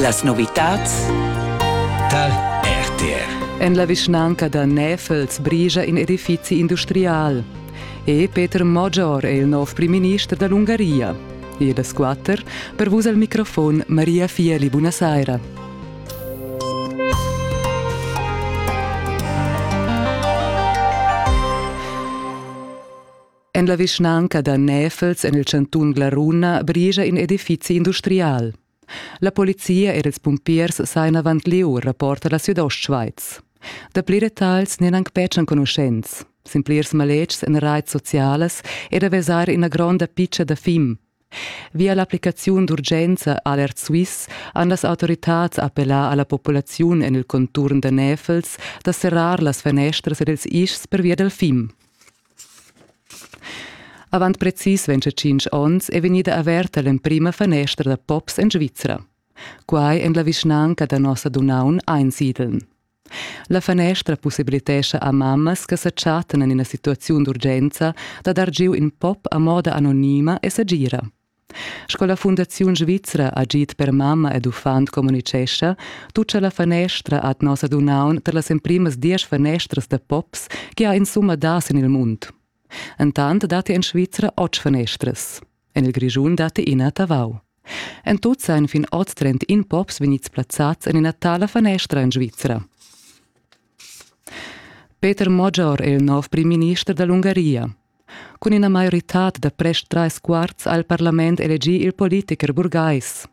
Las novitads tal RTR. En la vischnanca da Näfels brigia in edifizi industrial. E Peter Moggior è il nov primminister da l'Ungaria. E da squatter, per vus al microfon Maria Fieli, buonasera. En la vischnanca da Näfels en il chantun Glaruna brigia in edifizi industrial. La polizia e ils pumpiers sajan avant lieu, rapporta la Südostschweiz. Dapli detagls n'èn anc betg enconuschents. Sin plirs maletgs en raits socialas è da vesair ina gronda pitga da fim. Via l'applicaziun d'urgenza Alert Suisse han las autoritads appellà a la populaziun en il conturn da Näfels da serrar las fanestras ed ils ischs pervia dal fim. Avant precis 25 onns è vegnida averta l'emprima fanestra da pops en Svizra. Quai en la vischnanca da Nossadunnaun Einsiedeln. La fanestra pussibilitescha a mammas che sa chattan en ina situaziun d'urgenza da dar giu in pop a moda anonima e segira. Sco la Fundaziun svizra Agid per mamma ed uffant communicescha, tutga la fanestra ad nossa dunaun tar las emprimas diesch fanestras da pops che ha insumma dà sin il mund. Entant datti en Svizra otg fanestras. En il Grischun datti ina a Tavau. En tut sajan fin oz trentin pops vegnids plazzads en ina tala fanestra en Svizra. Peter Moggior è il nov prim-minister da l'Ungaria. Cun ina maioritad da prest trais quarts ha il parlament elegì il politicher burgais.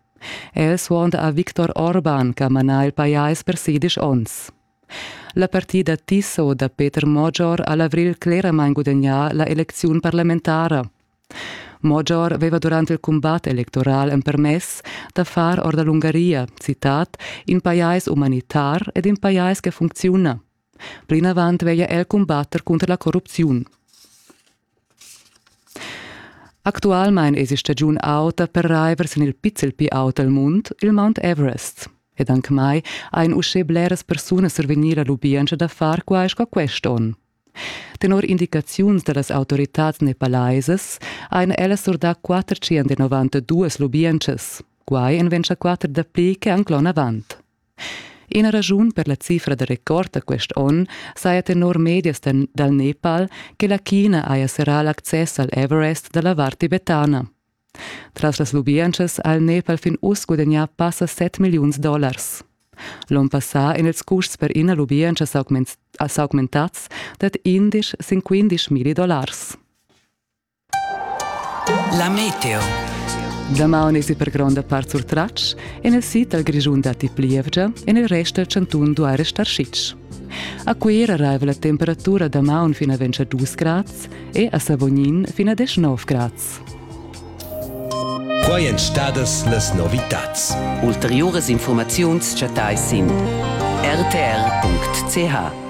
El suonda a Viktor Orban che ha manà il pajais per sedisch onns. La partida tissa da Peter Mojor ha l'avrigl cleramain gudagnà la elecziun parlamentara. Mojor aveva durant il cumbat electoral empermess da far or da l'Ungaria, citat, in pajais umanitar ed in pajais che funcziuna. Plinavant veglia el cumbatter cunter la corrupziun. Actualmein esi stagiun auta per raiver sin il pizzel pli aut el mund, il Mount Everest. Ed anche mai ein uschè bleras persunas survegnir la lubientscha da far quai sco quest'onn. Tenor indicaziuns dallas autoritads nepalaisas ein ellas surdà 492 lubientschas. Quai en ventscha quatter dapli che anclon avant. Ina raschun per la cifra da record da quest onn saja tenor medias dal Nepal che la China haja serrà l'access al Everest da la vart tibetana. Tras las lubientschas ha il Nepal fin uss gudagnà passa 7 milliuns dollars. L'onn passà èn ils custs per ina lubientscha s'augmentads dad indisch sin quindisch milli dollars. La meteo. Damaun esi per gronda part surtratgs, en il sid dal Grischun datti plievgia, en il rest dal chantun duai restar sitg. A Cuira arriva la temperatura damaun fin a 22 grads e a Savognin fin a 19 grads. Quai èn stadas las novitads. Ulteriuras informaziuns chattais sin rtr.ch.